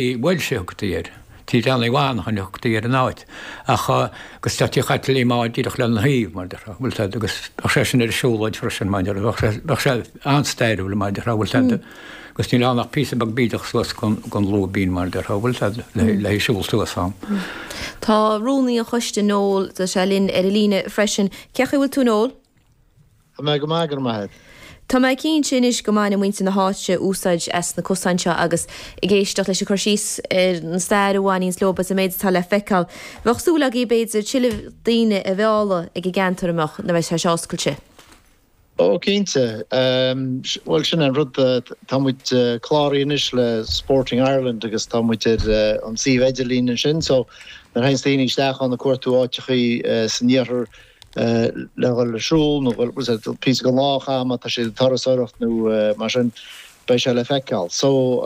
bhuel sé a thugtaí air. Tigh Leanaí Mhanannáin a thugtaí ar an áit, agus tá Tigh Chaitlín Maude díreach lena thaobh, mar a déarfá, bhuel tá, agus bheadh sé sin ar an siúlóid freisin, mar a déarfá, bheadh sé an-stairiúil, mar a déarfá, bhuel tá, agus níl ann ach píosa beag bídeach suas gon lúibín, mar a déarfá, bhuel tá, le siúl suas ann. Tá rúnaí an choiste, Noel, tá sé linn ar an líne freisin. Cén chaoi a bhfuil tú, Noel? Go maith, go raibh maith agat. Tá mé cinnte anois go mbaineann muintir na háite úsáid as na cosáin seo agus ag éisteacht leis an gcur síos ar an stair a bhaineanns leo agus an méid atá le feiceáil. Bheadh súil agaibh b'fhéidir tuilleadh daoine a mhealladh ag an gceantar a mbeadh na Rice oscailte. Ó cinnte. Bhuel sin é an rud, tá muid cláraithe anois le Sporting Ireland agus tá muid ar an suíomh idirlín ansin so nuair a théanns daoine isteach ann ag cuartú áiteachaí san iarthar le dhul ag siúl nó píosa den lá a chaitheamh má tá siad ag turasóireacht nó mar sin, beidh sé le feiceáil. So,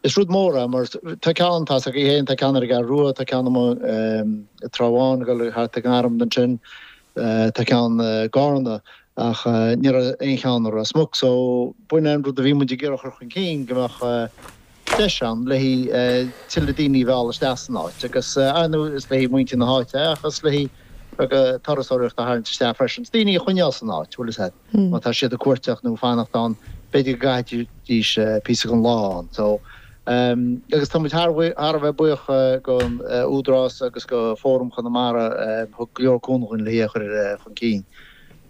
is rud mór é mar tá ceann, tá fhios againn féin, tá ceann ar an gCeathrú Rua, tá ceann amuigh i Trá Bháin ag dul thart ar Gharmna ansin, tá ceann i gCárna ach ní raibh aon cheann i Ros Muc. So, b'shin é an rud a bhí muid ag iarraidh a chur chun cinn, go mbeadh. deis ann le tuilleadh daoine a mhealladh isteach san áit agus ar ndóigh is le muintir na háite ach is le turasóireacht a tharraingt isteach freisin, daoine a choinneáil san áit má tá siad ag cuairteach nó ag fanacht ann b'fhéidir go gcaithfidís píosa den lá ann so agus tá muid thar a bheith buíoch den Údarás agus de Fóram Chonamara a thug go leor cúnamh dúinn le í a chur chun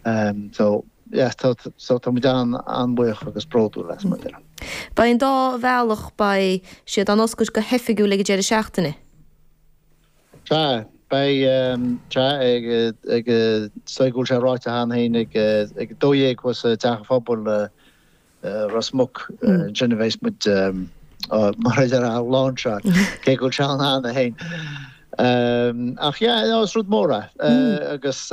cinn so. yeah so tá muid an-bhuíoch agus bródúil as, mar a déarfá. Beidh an dá bhealach, beidh siad á n-oscailt go hoifigiúil ag an deireadh seachtaine. Sea, beidh, sea, ag, ag, so go bhfuil sé ráite cheana féin ag, ag a dó dhéag thuas ag Teach an Phobail i Ros Muc, ansin a bheas muid, mar a déarfá, á lainseáil, cé go bhfuil sé ann cheana féin. Ach yeah, no, is rud mór é, agus.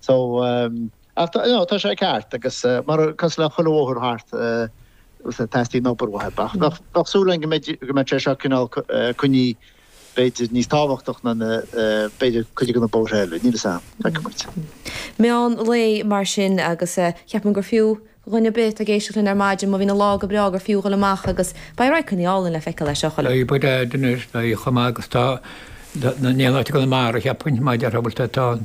So, ach you know, tá sé ceart agus mar, cosúil le chuile bhóthar thart, teastaíonn obair uaidh. Ach ach tá súil againn go mbeidh, go mbeadh sé seo cineál coinnithe b'fhéidir níos tábhachtach ná na, b'fhéidir cuid de na bóithre eile, níl fhios a'm, feicfidh muid. Meán lae mar sin agus cheapfainn gur fiú do dhuine ar bith atá ag éisteacht linn ar maidin, má bhíonn an lá go breá, gur fiú dhul amach agus beidh radharcannaí álainn le feiceáil acu. Beidh beidh anois, beidh chomh maith agus tá, níl áit i gConamara, cheapfainn, mar a déarfá, bhuel tá, tá an.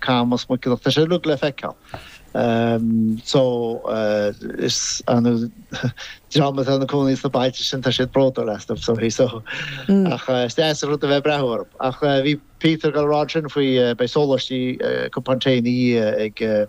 Camas, Muiceanach, tá sé uilig le feiceáil so an dream atá ina cónaí sna bailte sin tá siad bródúil astu so so ach is deas rud a bheith breathú orthu ach bhí Peter ag rá ansin faoi beidh sóláistí cupán tae ina dhiaidh ag